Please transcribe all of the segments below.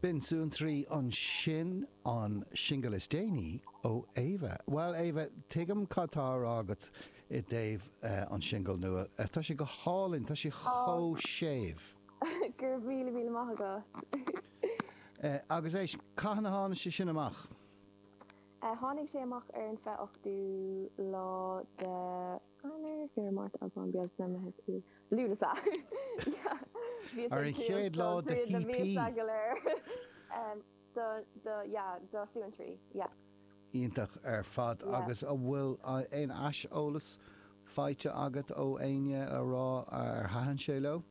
B'in Suantraí ansin, an singil is déanaí ó Éabha. Bhuel, Éabha, tuigim cad tá á rá agat i dtaobh an singil nua. Tá sé go hálainn, tá sé chomh séimh. Ó, go raibh míle míle maith agat. Agus éist, cathain a tháinig sé sin amach? Tháinig sé amach ar an 28ú lá de. Eanáir, Feabhra, Márta, Aibreán, Bealtaine, Meitheamh, Iúil, Lúnasa. Bhíos Ar ag an tuíodh chéad lá do de thríod na CP. mhíosa go léir em, do, do, yeah, do suantraí, yeah. Iontach ar fad. Yeah. Agus an bhfuil eh, aon aiseolas faighte agat ó éinne le rá ar thaitin sé leo?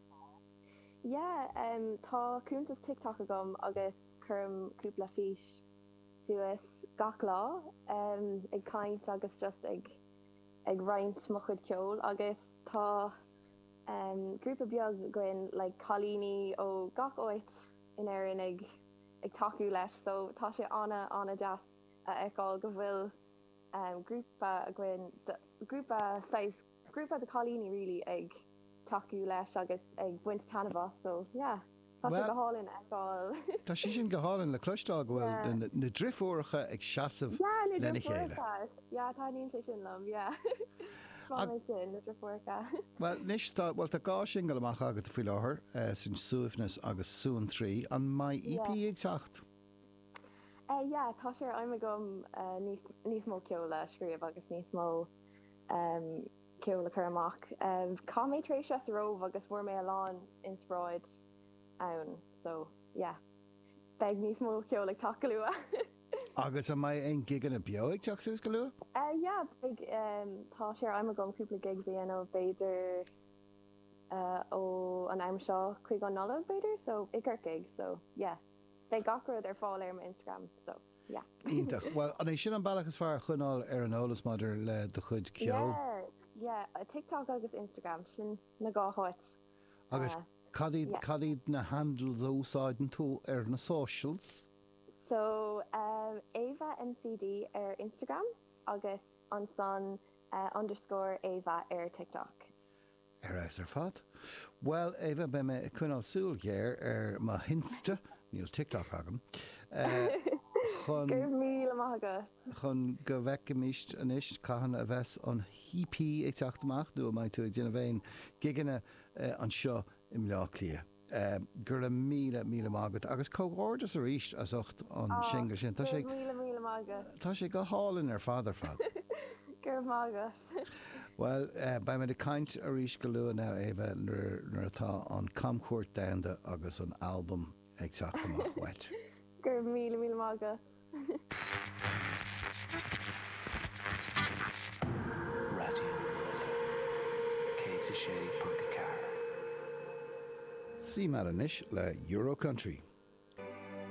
Yeah, em, tá cuntas TikTok agam agus cuirim cúpla fís suas gach lá, em, ag caint agus just ag. ag roinnt mo chuid ceoil agus tá grúpa beag againn le cailíní ó gach áit in Éirinn ag ag tacú leis so tá sé ana ana deas a fheiceáil go bhfuil grúpa againn grúpa saghas grúpa de cailíní really ag tacú leis agus ag baint taitneamh as so yeah. Tá sé go hálainn a fheiceáil. Tá sé sin go hálainn le cloisteáil, go bhfuil na driofúracha ag seasamh lena chéile. Yeah, taitníonn sé sin liom, yeah. Tá sé sin, na driofúracha. Bhuel, anois, tá, bhuel, tá dhá singil amach agat faoi láthair, sin Suaimhneas agus Suantraí. An mbeidh EP ag teacht? Eh, yeah, tá sé ar aidhm agam níos, níos mó ceoil a scríobh agus níos mó, em. ceol a chur amach. Chaith mé tréimhse sa Róimh agus fuair mé a lán inspioráid ann so yeah, beidh níos mó ceol ag teacht go luath! Agus an mbeidh aon gigeanna beo ag teacht suas go luath? Yeah, beidh, tá sé ar aidhm agam cúpla gig a dhéanamh b'fhéidir ó an am seo chuig an Nollaig b'fhéidir so i gCorcaigh so yeah, beidh gach rud ar fáil ar mo Instagram so. Iontach. Bhuel, an é sin an bealach is fearr a choinneáil ar an eolas maidir le do chuid ceoil? Yeah, yeah. TikTok agus Instagram, sin na dhá háit. Agus cad iad, cad iad na handles a úsáideann tú ar na socials? So, Éabha NCD ar Instagram agus ansan underscore Éabha ar TikTok. Ar fheabhas ar fad. Bhuel, Éabha, beidh mé ag coinneáil súil ghéar ar mo hInsta, níl TikTok agam, chun, Go raibh míle maith agat! chun go bhfeicfimis anois cathain a bheas an EP ag teacht amach nó an mbeidh tú ag déanamh aon gigeanna anseo i mBleá Cliath. Go raibh míle, míle maith agat, agus comhghairdeas arís as ucht an singil sin. Tá sé go hálainn ar fad, ar fad. Go raibh maith agat. Bhuel, beimid ag caint arís go luath now, Éabha, nuair atá an camchuairt domhanda agus an albam ag teacht amach uait. Go raibh míle, míle maith agat. Raidió na Life 106.4. Seo muid anois le Euro Country.